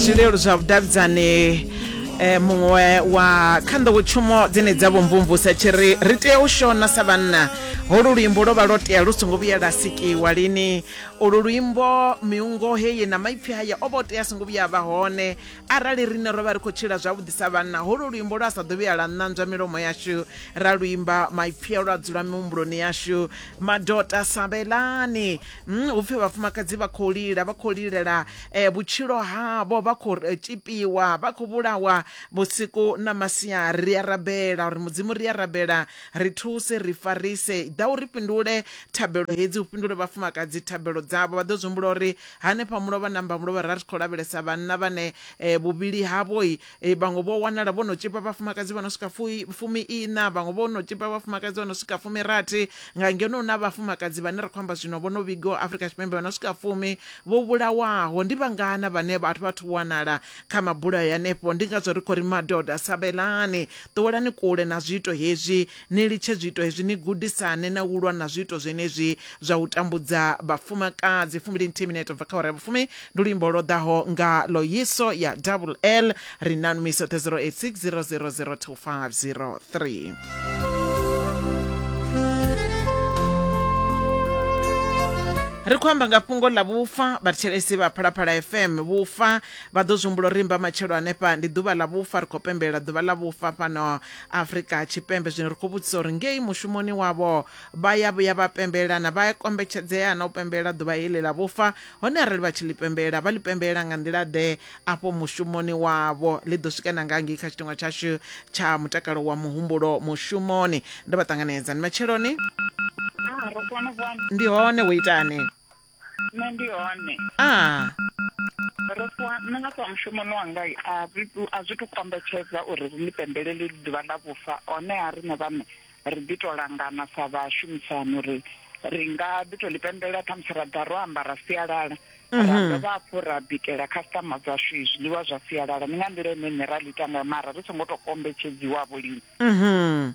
zwileludzi zwa vhudavhidzani eh, muṅwe wa kha nḓowetshumo dzine dza vho mvumvusa tshi ri ri tea u shona sa vhanna holu luimbo lwo vha lwo tea lu songo vhuya lwa sikiwa lini ulu luimbo miungo heyi na maipfi haya o vha o tea a songo vhuya a vha hone arali riṋe ro vha ri khou tshila zwavhuḓi sa vhanna holu luimbo lwa sa ḓo vhuya lwa ṋanzwa milomo yashu ra luimba maipfi a lwa dzula mihumbuloni yashu madota sabelani Mm, hu pfi vhafumakadzi vha khou lila vha khou lilela eh, vhutshilo havho vha khou eh, tshipiwa vha khou vhulawa vhusiku na masia ri a rabela uri mudzimu ri a rabela ri thuse ri farise ḓa uri fhindule thabelo hedzi u fhindule vhafumakadzi thabelo dzavho vha ḓo zwi humbula uri hanefha mulovha namba mulovha ra ri khou lavhelesa vhanna vhane eh, vhuvhili havhoi E, vhaṅwe vho wanala vho no tshipa vhafumakadzi vha no swika fumi-iṋa vhaṅwe vho no tshipa vhafumakadzi vha no swika fumi-rathi nga ngeno hu na vhafumakadzi vhane ra khou amba zwino vho no vhigiwa Afrika Tshipembe vha no swika fumi vho vhulawaho. Ndi vhangana vhane vhathu vha thu wanala kha mabulayo anefho? Ndi ngazwo ri khou ri madoda, sabelani, ṱuwelani kule na zwiito hezwi. Ni litshe zwiito hezwi, ni gudisane na u lwa na zwiito zwenezwi zwa u tambudza vhafumakadzi. Fumbili nthihi minete u bva kha awara ya vhufumi, ndi luimbo lwo ḓaho nga Loyiso ya Double L. Ri na nmi soṱhe 086 000 2503. Ri khou amba nga fhungo ḽa vhufa. Vhathetshelesi vha Phalaphala FM vhufa vha ḓo zwi humbula uri mbamatshelo hanefha ndi ḓuvha ḽa vhufa. Ri khou pembelela ḓuvha ḽa vhufa fhano afrika tshipembe zwino ri khou vhudzisa uri ngei mushumoni wavho vha ya vhuya vha pembelelana vha ya kombetshedzea na u pembelela ḓuvha heḽi ḽa vhufa hone arali vha tshi ḽi pembelela vha ḽi pembelela nga nḓila ḓe afho mushumoni wavho ḽi ḓo swika na nga ngei kha tshiteṅwa tshashu tsha mutakalo wa muhumbulo mushumoni ndo vha ṱanganedza ndi matsheloni ah, ndi hone wo itani nṋe ndi hone a ro ṱuwa nṋe nga ṱuwa mushumoni wanga a zwi tu- a zwi tu kombetshedza uri ri ḽi pembelele ḽi ḓuvha ḽa vhufa honeha riṋe vhaṋe ri ḓi tou langana sa vhashumisani uri ri nga ḓi tou ḽi pembelela khamusi ra ḓa ro ambara sialala ra dovha hafhu ra bikela khasitama dzashu zwiḽiwa zwa sialala ndi nga nḓila ine nṋe ra ḽi ita ngayo mara ri songo tou kombetshedziwavho lini mhm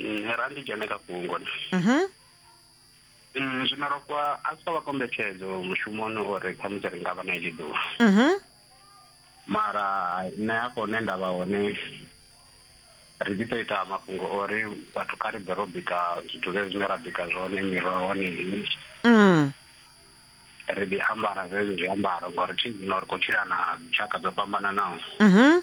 Mm, ra ndi dzhene kha fhungo na mhm. mm, zwino ro kwa a si vha kombetshedzo mushumoni uri khamusi ri nga vha na iḽi ḓuvha mhm. mara nṋe hafho hune nda vha hone ri ḓi to ita mafhungo ori vhathu kha ri bve ro bika zwithu zwe zwine ra bika zwone miroho ni mm. ri ḓi ambara zwezwo zwiambaro ngori thi zwino ri khou tshila na tshaka dzo fhambananaho mhm.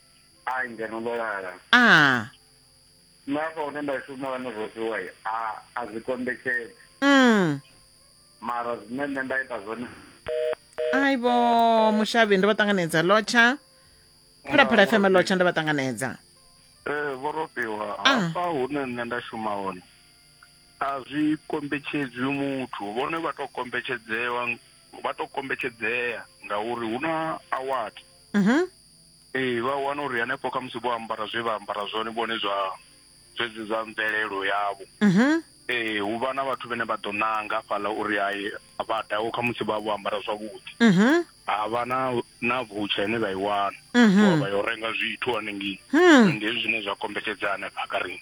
ai ngeno ndo lala a nṋe afha hune nda shuma hone zwo fhiwa a a zwi kombetshedzi mm. mara zwine nṋe nda ita zwone ai vho mushavhi ndo vha ṱanganedza lotsha phalaphala fm lotsha ndo vha ṱanganedza ee vho robiwa Ah. hafha hune nṋe nda shuma hone a zwi kombetshedzwi muthu vhone vha to kombetshedzewa vha to kombetshedzea ngauri hu na award Mhm. Ee vha wana uri hanefho kha musi vho ambara zwe vha ambara zwone vhone zwa zwedzi zwa mvelelo yavho mhm. ee hu vha na vhathu vhane vha ḓo nanga fhaḽa uri hai vha daho kha musi vha vho ambara zwavhuḓi mhm. ha vha na na vutsha ine vha i wana mhm. vha yo renga zwithu hanengei hmm. ndi hezwi zwine zwa kombetshedza hanefha kha riṋe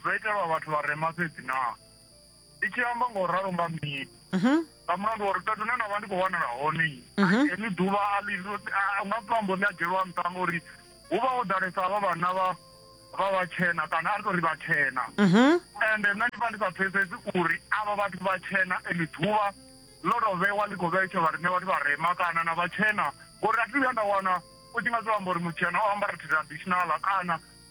Dzo itelwa vhathu vharema fhedzi naa? Ndi tshi amba nga u ralo nga mini? Mhm. Nga mulandu wa uri fhethu hune nda vha ndi khou wanala hone mhm. heḽi ḓuvha a ḽi nga si ambo ḽi a dzhielwa nṱha ngauri hu vha ho ḓalesa havha vhanna vha vha vhatshena kana a ri tou ri vhatshena mhm. ende nṋe ndi vha ndi sa pfesesi uri avha vhathu vhatshena eḽi ḓuvha ḽo tou vhewa ḽi khou vhetshelwa riṋe vhathu vharema kana na vhatshena ngori a thi vhuya nda wana u tshi nga zwi amba uri mutshena o ambara traditional kana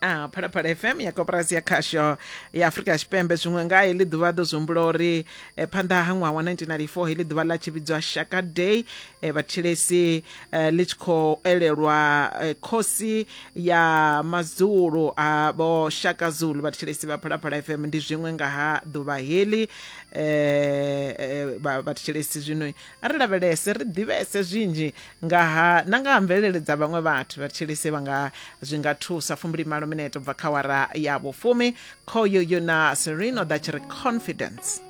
a phalaphala fm ya koporasi ya khasho ya afurika tshipembe zwiṅwe nga heḽi ḓuvha ḓo zwi humbula uri eh, phanḓa ha ṅwaha wa 1994 heḽi ḓuvha ḽa tshi vhidzwa shaka day eh, vhatshilesi eh, ḽi tshi khou elelwa eh, khosi ya madzulu a vho shaka zulu vhatshilesi vha phalaphala fm ndi zwiṅwe nga ha ḓuvha heḽi eh, eh, vha- vhatshilesi zwino A ri lavhelese ri ḓivhese zwinzhi nga ha na nga ha mvelele dza vhaṅwe vhathu. Vha thetshelesi vha nga zwi nga thusa. Fumbilimalo minete u bva kha awara ya vhufumi. Khoyo yo na Serene o ḓa tshi ri Confidence.